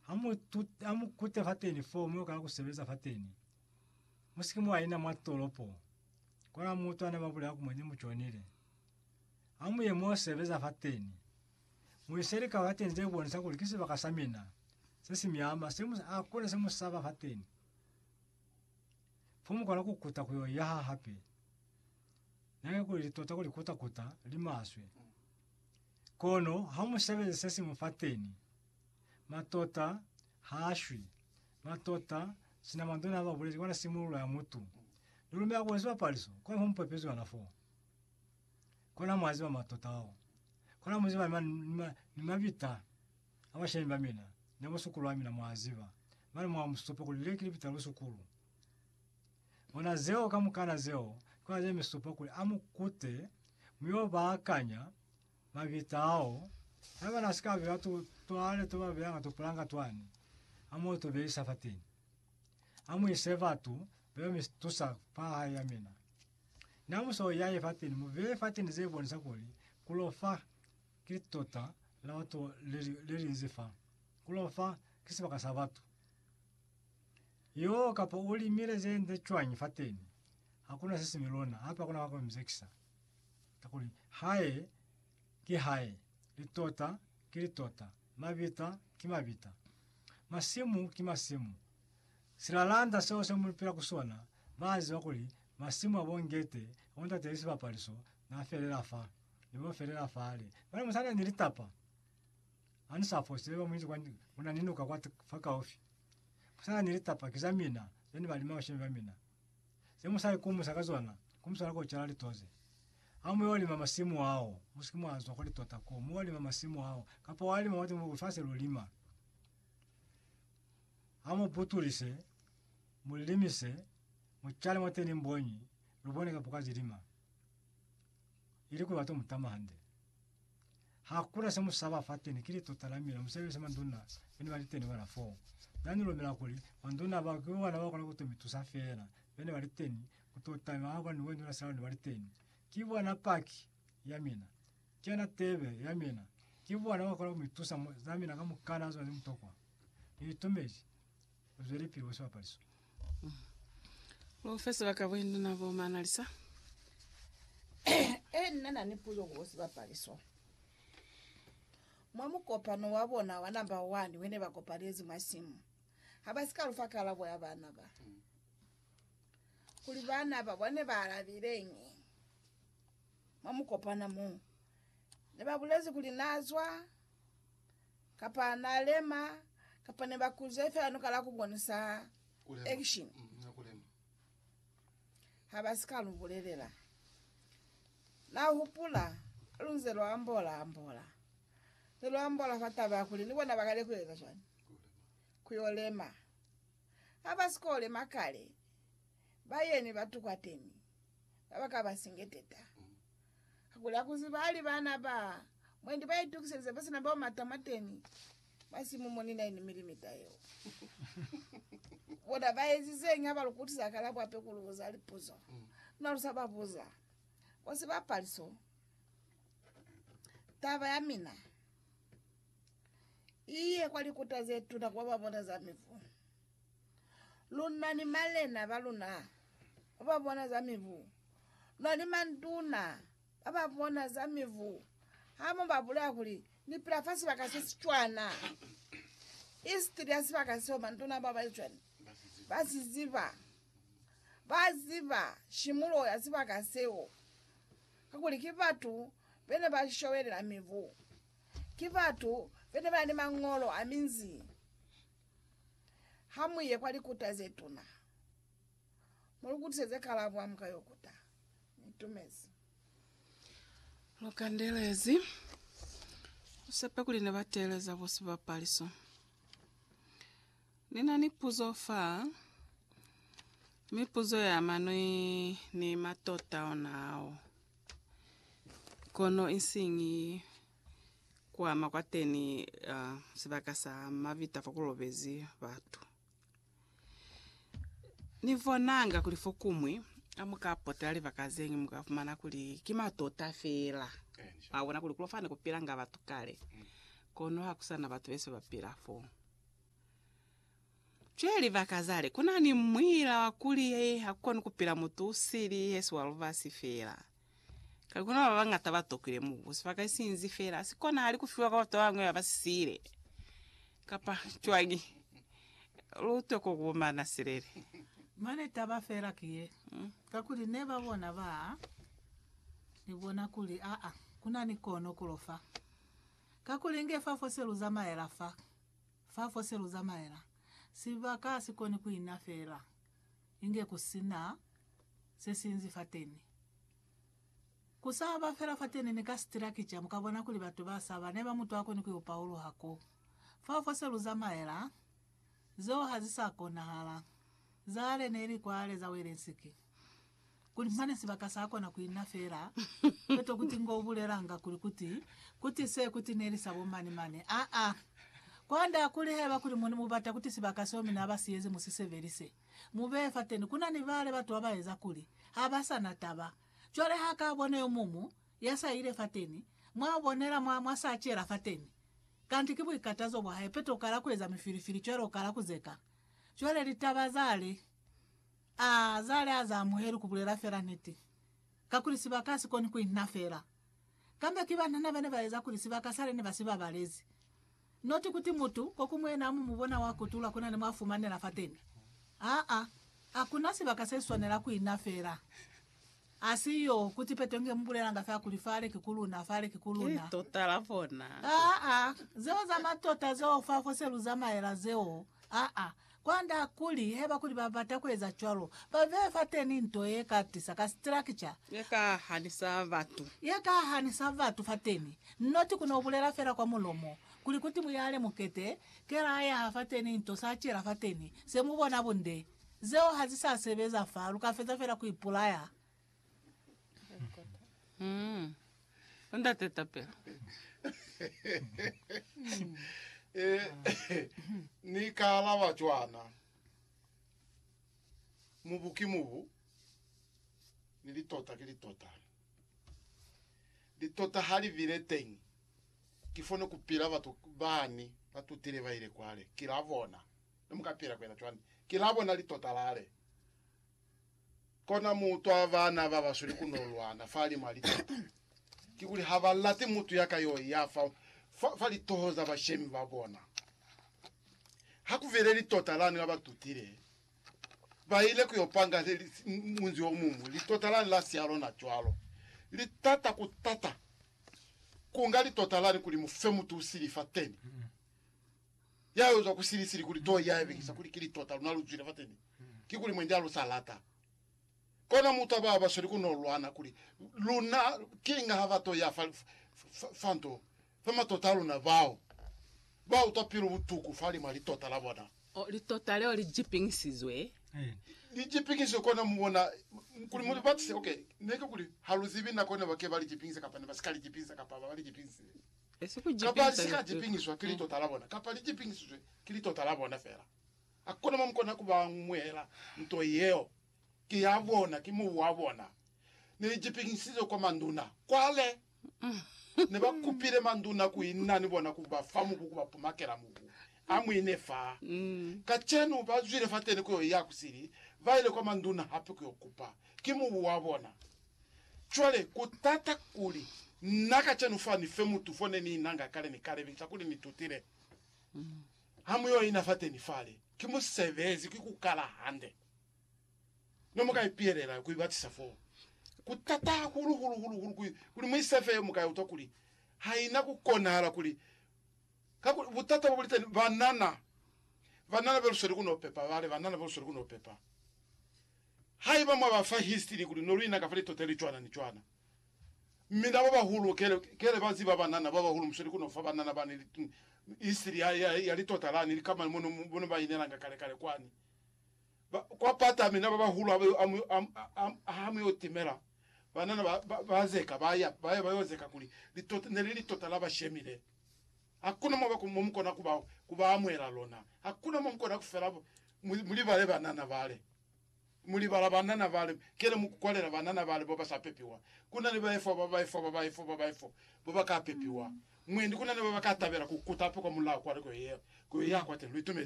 Ha mu, tu, ha mu kute fateni foo, mu yo kala ku sebeza fateni. Mu si ke mwa ina mwa tolopo. Kona mutu ane ba bulela ku mwa ne mu jonile. Ha mu ye mu yo sebeza fateni. Mu ise lika fateni ze bonisa kuli ki sibaka sa mina, se si miama, se mu, hakuna se mu saba fateni. Fo mu kona ku kuta ku yo yaha hape. Nihake kuli li tota kuli kuta-kuta, li maswe. Kono ha mu sebeze se siñwi fateni. Matota ha a shwi. Matota, sina mandona haba bulezi kwana simululo ya mutu. Ni lumela kuli sibapaliso kona mo mupepezwi ona foo. Kona mwa ziba matota ao. Kona mu ziba ni, ni, ni mabita a bashemi ba mina, ni a busukulu ba mina, mwa a ziba. Mane mwa musupa kuli le ki libita la busukulu. Bona zeo kamukana zeo ki ona ze mi supa kuli a mu kute, mu yo ba akanya, Mabita ao, haiba na si ka beya tu, tu ale tu ba beya nga tupulanga twani, a mo tu beisa fateni. A mu ise batu beo mi tusa fa hae ya mina. Na mu so yaye fateni, mu beye fateni ze bonisa kuli ku lo fa ki tota la batu le, le li nzi fa. Ku lo fa ki sibaka sa batu. Yoo, kapa u limile ze nde cwañi fateni, ha ku na se si mi lona, hape ha ku na wa ku mi zekisa. Kakuli Hae ki Hae, litota ki litota, mabita ki mabita, masimu ki masimu. Silalanda seo se mu pila ku sona, ba ziba kuli masimu abo ngete ya bo ntate Lisibapaliso na felela fa, ne bo felela fale. Mane mu sa na ni litapa, ha ni sa fose, ne ba mu isi kwa, ku na ni nuka kwa, fa kaufi. Mu sa na ni litapa, ki za mina, ze ne ba lima bashemi ba mina. Ze musali ku musa ka zona, ku musala ko cala litoze. Ha mu yo lima masimu ao, mu si ke mwa zwa kwa litota ko, mu wa lima masimu ao, kapa wa lima mwa lifasi lu lima. Ha mu putulise, mu limise, mu cale mwateni mbonyi, lu bone kapo ka zilima. Ili kuli wa to mutama hande. Hakuna se musaba fateni ki litota la mina musebeli se manduna bene bali teni bona foo. Na ni lumela kuli manduna bao ki bona ba kona kuto mi tusa fela bene bali teni kuto tama haba ni wendula silalo ne bali teni. Ki bona paki ya mina. Ki yona tebe ya mina. Ki bona ba kona ku mi tusa mu za mina kamukana zona ni mutokwa. Ni itumezi Zwelepili wa sibapaliso. Profesa Bakabwindu na bo Manalisa. E nna na ni puzo ku bo sibapaliso. Mwa mukopano wa bona wa namba wani wene ba kopalezi mwa simu, ha ba si ka lufa kalabo ya bana ba, kuli bana ba bona ne ba alabileñi. Mwa mukopano mo, ne ba bulezi kuli na zwa Kapa na lema, kapa ne ba kuze fela ni kala ku bonisa action. Ha ba si ka lu bulelela. Na hupula, lu nze lu ambola, ambola. Ze lu ambola fa taba ya kuli ni bona ba kale ku eza cwani? Ku yo lema. Ha ba si ko lema kale, ba yemi batu kwateni, ba ba ka ba singeteta. Hakuli akuziba hali baana ba mwendi baitukiselize basina bao matama teni, basimumoni 9 milimita yeo. Bona baezizeñi habalukutisa hakalabo hape kulubuza lipuzo na lusababuza? Kwa sibapali so, taba yamina iye kwa likuta zetuna kuba babona za mivu. Luna ni malena ba luna ba ba bona za mibu, luna ni manduna ba ba bona za mibu, ha mu ba bulela kuli, Ni pila fa sibaka se si cwana. Isitili ya sibaka seo manduna ba ba cwana ba si ziba. Ba ziba shimulo ya sibaka seo, kakuli ki batu be ne ba shobelela mibu, ki batu be ne ba na ni mañolo a minzi, Ha mu ye kwa likuta ze tuna, mu lu kutiseze kalabo ha mu ka yo kuta. Ni tumezi. Lu kandelezi. Lu sepe kuli ne ba teeleza bo sibapaliso. Ni na ni puzo fa, mi puzo ya ama ni, ni matota ona ao. Kono isiñi kuama kwateni sibaka sa mavita fakulobezi batu. Nibonanga kuli fokumwi hamuka potela libaka zeñwi muka fumana kuli ki matota feela. Mwabona kuli kulo fane kupilanga batu kale, kono hakusana batu bese bapila foo. Cwale libaka zale, kuna ni muila wa kuli hakukoni kupila mutu usili hesi wa lubasi fela. Kale kuna babañata batokwile mubu, sibaka isinzi fela, sikonahali kufiwa kwa batu babañwi baba sisile. Kapa cwañi? Lutwe ko kubumana silele. Mane taba fela ki ye, kakuli neba bona ba ni bona kuli aa, kuna ni kono kulo fa. Kakuli inge fa fo se luzamaela fa, Fa fo se lu zamaela, sibaka ha si koni ku ina fela inge ku si na se sinzi fateni. Ku sa ba fela fateni ni ka sitilakija, mu ka bona kuli batu ba saba ne ba mu twa koni ku yo pauluha ko. Fa fo se lu zamaela, zeo ha zi sa konahala. Zale ne li kwale za Welensiki. kuli mane sibaka sa kona ku ina fela peto kuti ngo bulelanga kuli kuti kuti se kuti neli sa bo mani mani aa kwand'a kuli haiba kuli mu mu bata kuti sibaka seo mina ba siyezi mu si sebelise mu beye fateni kuna ni bale batu ba ba eza kuli ha ba sa na taba cwale ha ka bona yo mumu ya sa ile fateni mwa bonela mwa mwa sa cela fateni kanti ki buikatazo bwa hae peto kala ku eza mifilifili cwale u kala ku zeka cwale litaba zale A za li a za amuheli ku bulela fela niti, kakuli sibaka ha si koni ku inna fela. Kambe ki banana ba ne ba eza kuli sibaka sale ne ba si babalezi. Not kuti mutu ko ku muena amu mu bona wa kutula ku na ni mwa fumanela fateni. Aa, akuna sibaka se si swanela ku inna fela. Asiyo kuti Petro nge mubulelanga fa kuli fale ki ku luna, fale ki ku luna. Tota la bona. Aa, zeo za matota zeo fa fose lu zamaela zeo. Aa, kwand'a kuli haiba kuli ba bata ku eza cwalo, ba beye fateni nto ye ka tisa ka structure, Ye ka hanisa batu. ye ka hanisa batu fateni, not ku no bulela fela kwa mulomo, kuli kuti mu yale mukete, kela a yaha fateni nto sa cela fateni, se mu bona bunde. Zeo ha zi sa sebeza fa, lu ka feza fela ku ipulaya. Umm Ndate tapelo. Ni ka alaba cwana, Mubu ki mubu, ni litota ki litota. Litota ha li bile teñi, kifo ne ku pila batu bani ba tutile ba ile kwale, ki la bona. Ne mu ka pila ku yena cwani? Ki la bona litota lale. Kona mu utwa bana ba basweli ku no lwana fa li mwa litota. Kikuli ha ba lati mutu ya ka yo ya fa, fa, fa litoho za bashemi ba bona. Ha ku bile litota lani la ba tutile, ba ile ku yo panga li, li, munzi o muñwi. Litota lani la siya lona cwalo. Li tata ku tata kunga litota lani kuli mu fe mutu sili fateni. Ya yo zwa ku sili-sili kuli to ya yabekisa kuli kili tota luna lu zwile fateni, kikuli mwendi a lu sa lata. Kono mu taba ba sweli ku no lwana kuli luna ki inga ha ba to ya fa, fa, fa nto fa matota a luna. Bao ba utwa pilu butuku fa limwa li tota la bona. Oh, li tota leo li jipinkisizwe. Li jipinkisizwe, kono mu bona kuli mu li batise. Okay, ne ki kuli ha lu zibi nako ne ba ke ba li jipinkisa kapa ne ba si ka li jipinkisa kapa ba li jipinkisile. Kapa li si ka jipingiswa ki litota la bona, kapa li jipingisizwe ki litota la bona fela. Ha ku na mo mu kona ku ba amuhela nto yeo. Ki ya bona, ki mubu wa bona. Ne li jipingisizwe kwa manduna. Cwale, ne ba kupile manduna ku inna ni bona ku ba fa mubu, ku ba pumakela mubu. A mu ine fa. Kacenu, ba zwile fateni ku yo iya ku sili, ba ile kwa manduna hape ku yo kupa. Ki mubu wa bona. Cwale, ku tata kuli, na kacenu fa ni fe mutu fo ne ni nanga kale, ni ka lebelisa kuli ni tutile. Ha mu yo ina fateni fale, ki musebezi, ki ku kala hande. Ne mu ka ipihelela ku ibatisa foo. Ku tata hahulu, hulu, hulu, hulu, kuli, kuli mu ise fe yo, mu ka utwa kuli ha ina ku konahala kuli, kakuli butata bo buliteni, banana, banana be lusweli ku no pepa, bale, banana be lusweli ku no pepa. Haiba mwa ba fa histiri kuli no luina kapa litota li cwana ni cwana, mi nabo bahulu kele kele ba ziba banana ba bahulu musweli ku no fa banana bani histiri ya, ya, ya litota lani, likamana mo no, mo no ba inelanga kale kale kwani ba, kwa pata. Mi na ba bahulu ha ba yo, ha, ha, ha mu yo timela banana ba, ba, ba zeka, ba ya, ba ya ba yo zeka kuli litota, ne li litota la ba shemile. Hakuna mo ba, mo mukona kuba, kuba amuhela lona. Hakuna mo mukona kufela bo. Mu, mulibale banana bale. Mulibala banana bale. Kele mukukwalela banana bale boba sa pepiwa. Kuna ni baefo, ba baefo, ba baefo, ba baefo, boba ka pepiwa. Mwendi kuna ni boba ka tabela ku kuta hape kwa mulao kwa nako yeo, ku yo ya kwateni. Lu itumezi?